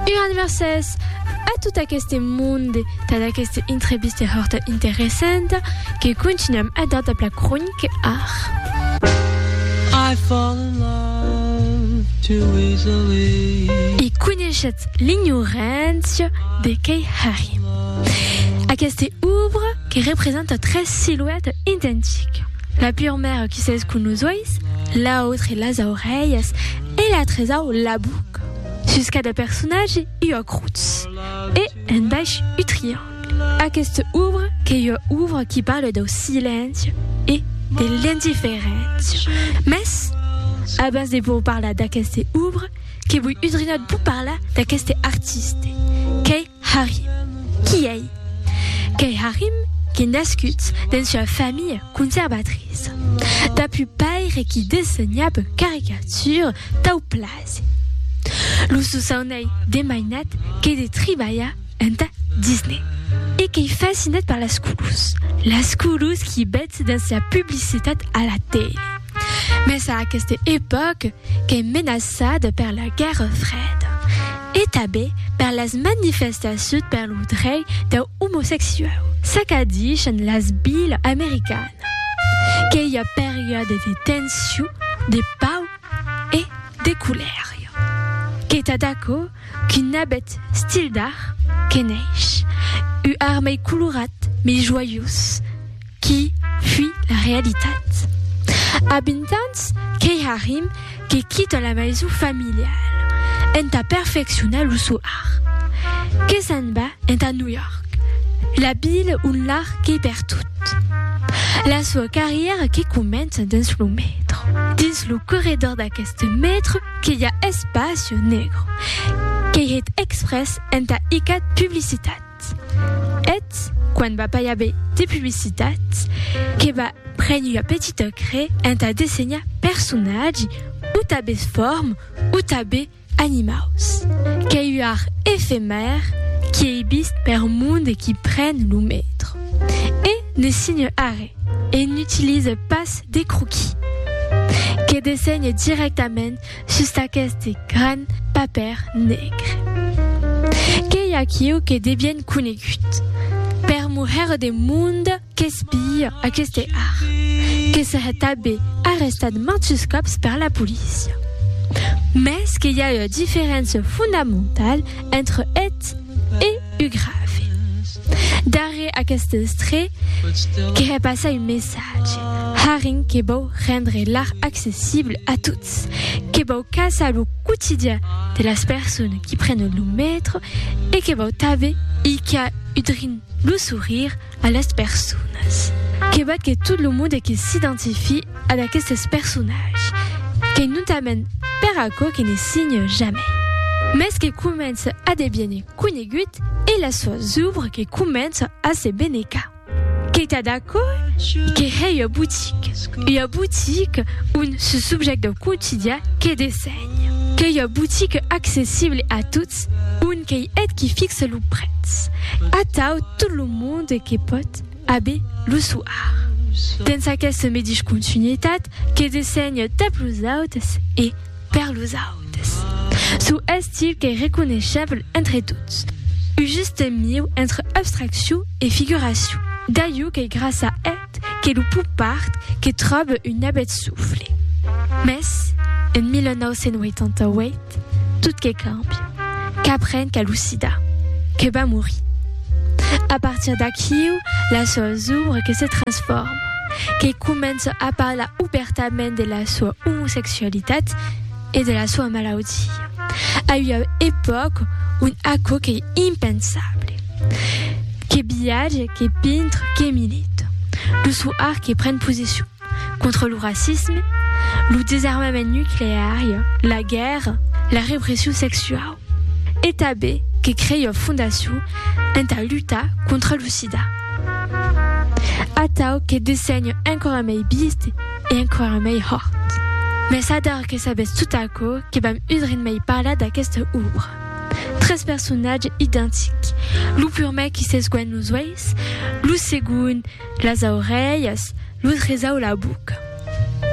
Un adverses a tot aqueste monde tad aqueste intrebiste hòrta interessanta que continuam a dar dab la cronique art. I fall in love too easily. E coneishetz l'ignorància de qu'ei Harry. Aqueste ouvre que representa tres silueta identica. La purmèra qui s'es cun los uèis, l'autre las aurelhas, e la tresau la buc. Sus cada personatge i ua crutz e en baish u triangle. Aquesta obra qu'ei ua obra qui parla dau silenci e de l'indiferéncia. Mès abans de vos parlar d'aquesta obra, que voi udrinat, voi parlar d'aqueste artiste qu'ei Harry. Qui ei? Qu'ei Harim qui nascut dens ua familha conservatriça. Dapu paire qui dessenhab caricature tau plase. Lo sosaunei de mainat qu'ei de tribalhar enta Disney. E qu'ei fascinat per las colors. Las colors qui betz dens la publicitat a la tele. Mes a aqueste epòc qu'ei menaçada per la Guèrra Freda e tabé per las manifestaciut per lo drei deu omosexuau, s'acadishen las bilas americana qu'ei a periòde de tension, de pau e de colèria. Qu'ei tad aquò qu'un abet stil d'art que neish, u ar mei colorat, mei joiós, Qui fui la realitat? A 20 ans, qu'ei Harim que quita la maison familiale entà perfeccionar lo sò art. Que s'en va entà New York, la vila ont l'art qu'ei pertot. La soa carrièra que comença dins lo metro. Dins lo corredor d'aqueste metro que i a Espacio Negro, qu'ei hèt exprès entà icat publicitat. publicitat. Eth, quan va pas i aver de publicitat, que va prene ua petita crè entà dessenhar personatgi, o tabes form, o tabe animaus. Qu'ei ua art efemèr qui ei vist per monde qui pren lo metro. E ne signe arrè, e n'utilise pas de croquis. Que dessenhe dirèctament Sus d'aqueste gran papèr negre. Qu'ei aquiu que de bien conegut. Per muher de monde qu'espia aqueste art. Que se hè tabé arrestat mantus còps per la polícia. Mès que i a ua diferéncia fondamentala entre eth e u grave. Darrèr aqueste estré que hè passar un messatge. Haring que vòu rendre l'art accessible a toths. Ets que vau caçar lo quotidian de las personas qui prenen lo metro e que vau tanben icar udrin lo sourire a las personas. Que vat que tot lo monde que s'identifiï ad aquestes personatges, qu'ei notament per aquò que ne signa jamai, mès que comença a deviene conegut e las soas ouvres que començan a se benecar. Qu'ei tad aquò? Que hèi ua botique. Ua botique on se subjèct dau quotidian que dessenhe. Qu'ei ua botique accessible a tots, on qu'ei eth qui fixe lo prètz. Atau tot lo monde que pòt aver lo sò art. Dens aquesta medish continuitat que dessenhe tap los autes e, Per los autes, çò estil qu'ei reconeishèble entre tots, un juste mieu entre abstraccion e figuracion, d'aiu qu'ei gràça eth que lo pop-art que tròbe un abet sofle. Mès, en 1988, tot que càmbia, qu'apren qu'as lo sida, que vas morir. A partir d'aquiu, las sòus obres que se transforman. que comença a parlar obèrtament de la soa omosexualitat e de la soa malaudia, a ua epòca ont aquò qu'ei impensable. Que viatge, que pintre, que milita. Lo soir que pren posicion contra lo racisme, lo desarmament nucleari, la guèrra, la repression sexuau. E tanben que creiò fondacion entà lutar contra lo sida. Atau que dessenho enquara mei bist e enquara mei hòrt. Mès ador que sabètz tot aquò que vam udrin mei parlar d'aquesta òbra. Tres personatges identics, lo purmèr qui s'esguènh los uèis, lo segond las aurelhas, Lo tresau la boca.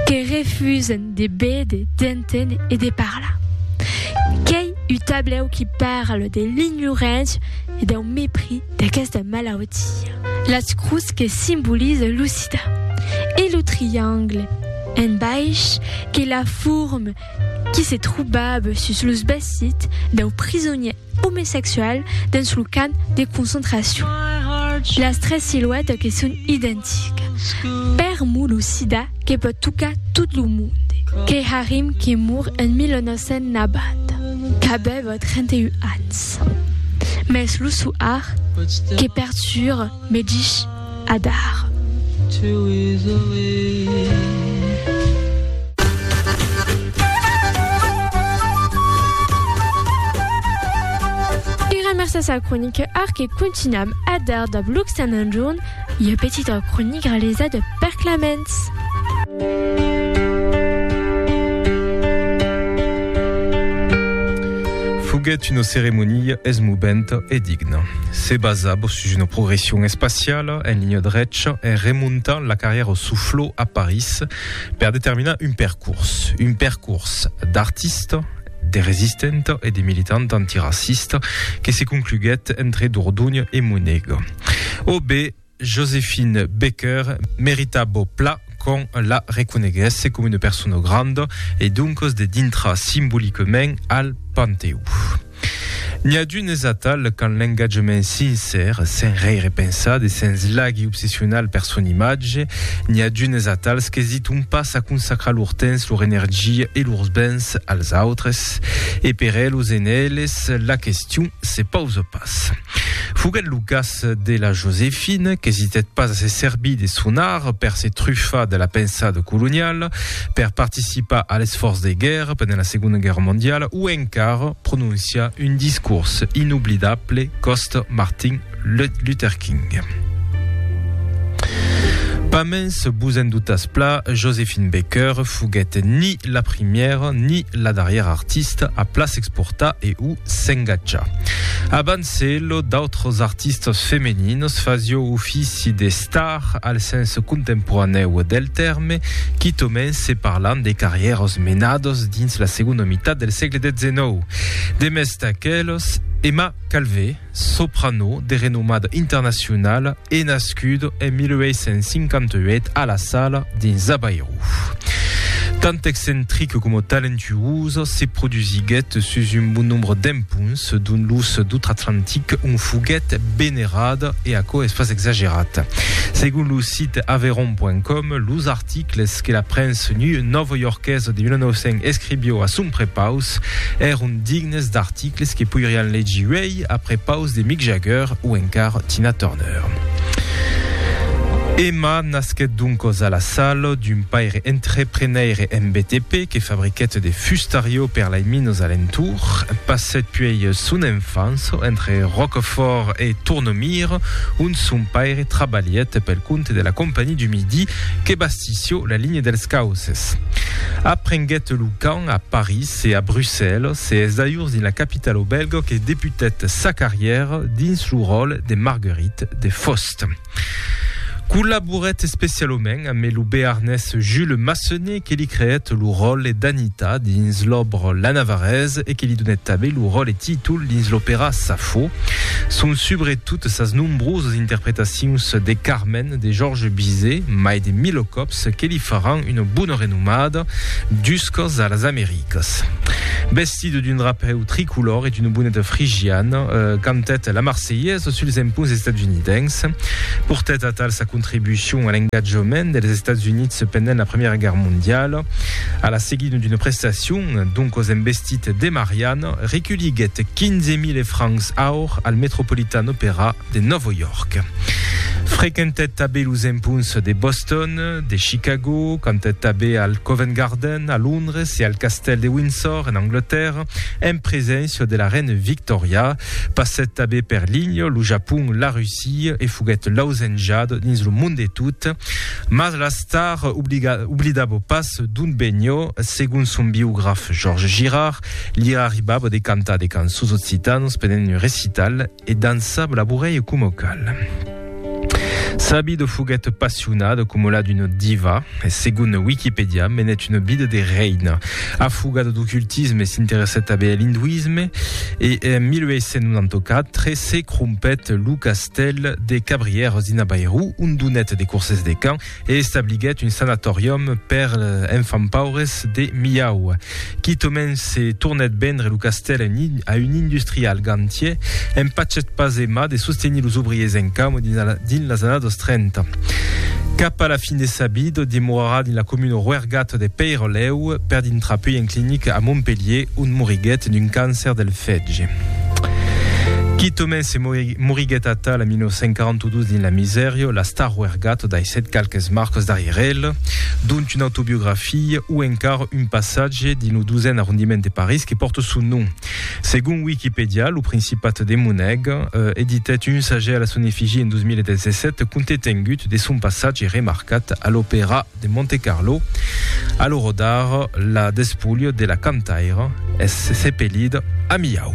Que refusen de béder, d'enténer e de parlar. Qu'ei u tablèu qui parle de l'ignorància e dau mepris d'aquesta malautia. Las crus que simboliza lo sida. E lo triangle, en baish, qu'ei la forma qui se trobava sus los vesits dau prisonièr omesexual dens lo camp de concentracion. Las tres siluètas que son identicas. Per mo lo sida que pòt tocar tot lo monde. Keharim que mor en 1990, qu'avèva 31 ans. Mès lo soar que perturba me dich. Adar. Era mercés a croniquear que contunham Adar dab Luc Saint Anjourn, ua petita cronica realizada per Claments. Foguèt una ceremonia esmoventa e digna. Se basava sus una progression espaciala en linha drecha en remontant la carrièra au Soufflot a París per determinar un percors, un percors d'artista, de resistenta e de militanta antiracista que se concluguèt entre Dordogne e Monegue. O bé, Josephine Baker merita bo pla qu'on la reconeguèsse coma una persona granda e doncas de dintrar simbolicament al Panteó. N'i a d'unes atal qu'an l'engatjament sincèr, sens rei repensar, de sens laghi obsessional per son imatge, n'i a d'unes atals qu'esiton pas a consacrar lor temps, lor energia e lors bens als autres. E per elos e en eles, la question se pausa pas. Foguèt lo cas de la Josefina, qu'esitèt pas a se servir de son art per se trufar de la pensada coloniala, per participar a l'esfòrç de guèrra pendent la Segonda Guèrra Mondiala o encara prononciar un discors inoblidable còsta Martin Luther King. Pamens vos en dotas pla, Josephine Baker foguèt ni la primièra ni la darrièra artista a pla s'exportar e o s'engatja. Abans Celo, d'autres artistas femeninos fasió ofici de star al sens contemporanèu del tèrme, quitomens se parlan de carrièras menadas dins la segonda mitat del sègle XIX. Demest d'aquelas, Emma Calvé, soprano de renomada internacionala, e nascut en 1858 a La Sala, dins Avairu. Tant excentric coma talentuós, se produsiguèt sus un bon nombre d'empunts dont los d'Outre-Atlantic, ont foguèt venerat, e aquò es pas exagerat. Segon lo sit aveyron.com, los articles que la premsa nòva-iorquesa de 1900 escrivió a son prepaus èron dignes d'articles que poirián legir uèi Après paus de Mick Jagger o encar Tina Turner. Emma nasquèt doncos a La Salle d'un paire entreprenaire en BTP que fabriquèt de fustariò per lai minos alentour. Passèt puèi son enfança entre Roquefort e Tournemire ont son paire trabalhèt pel compte de la Compagnie du Midi que bastissió la linha dels Cauces. Aprenguèt lo cant a París. Se a Brussèlas, se es dajors dins la capitala au Bèlga que debutèt sa carrièra dins lo ròle de Marguerite de Faust. Collaborèt especialament amé lo bearnés Jules Massenet que li creèt lo ròle d'Anita dins l'òbra La Navarraise e que li donèt tanbé lo ròle títol dins l'opèra Safo. Son subretot sas nombrosas interpretacions de Carmèn de Georges Bizet, mai de 1000 còps, còps que li faràn una bona renomada juscas a las Americas. Vestida d'un drapèu tricolor e d'una boneta frigiana, cantèt la Marselhesa suls emponts estatsunidencs, portèt atal sa contribucion a l'engatjament dels Estats Units pendent la Primièra Guèrra Mondiala. A la seguida d'una prestacion, doncas en vestit de Mariana, reculhiguèt 15.000 francs aur al Metropolitan Opera, de Nòvo York. Frequentèt tabé los empunts de Boston, de Chicago, cantèt tabé al Covent Garden a Londres e al Castèl de Windsor en Anglatèrra, en preséncia de la Reina Victòria. Passèt tabé per l'Índia, lo Japon, la Russia e foguèt lausenjat dins lo mond de tot. Mas la star oblidava pas d'ont venió. Segon son biograf Georges Girard, li arribava de cantar de cançons occitanas pendent un recital. E dançab labourèi coma cal. Sabido foguèt passionada coma la d'una diva e segon Wikipedia menèt una vida de reina. Afogada d'ocultisme s'interessèt tanben a l'induisme e en 1894 se crompèt lo castèl de Cabrières dins Bairou ont donèt de corses de can e establiguèt un sanatòrium per enfants paures de Milhau. Quitament se tornèt vendre lo castèl a un industrial gantier, empachèt pas Emma de sostenir los obriers en camo dins las annadas 30. Cap a la fin de sa vida, demorarà dins la comuna roergata de Peyrolèu, per dintrar puèi en clinica a Montpelhier, ont moriguèt d'un càncer del fetge. Quitament se Moriguèt atal en 1942 dins la misèria, la star Wergat daissèt qualques marcas darrièr el, dont una autobiografia o encara un passatge dins lo dosèn arrondiment de París que pòrta son nom. Segon Wikipedia, lo Principat de Monèga editèt un sagèr a la son efigia en 2017 compte tengut de son passatge remarcat a l'Opèra de Montecarlo a lo rodar la despulha de la cantaira es sepelida a Milhau.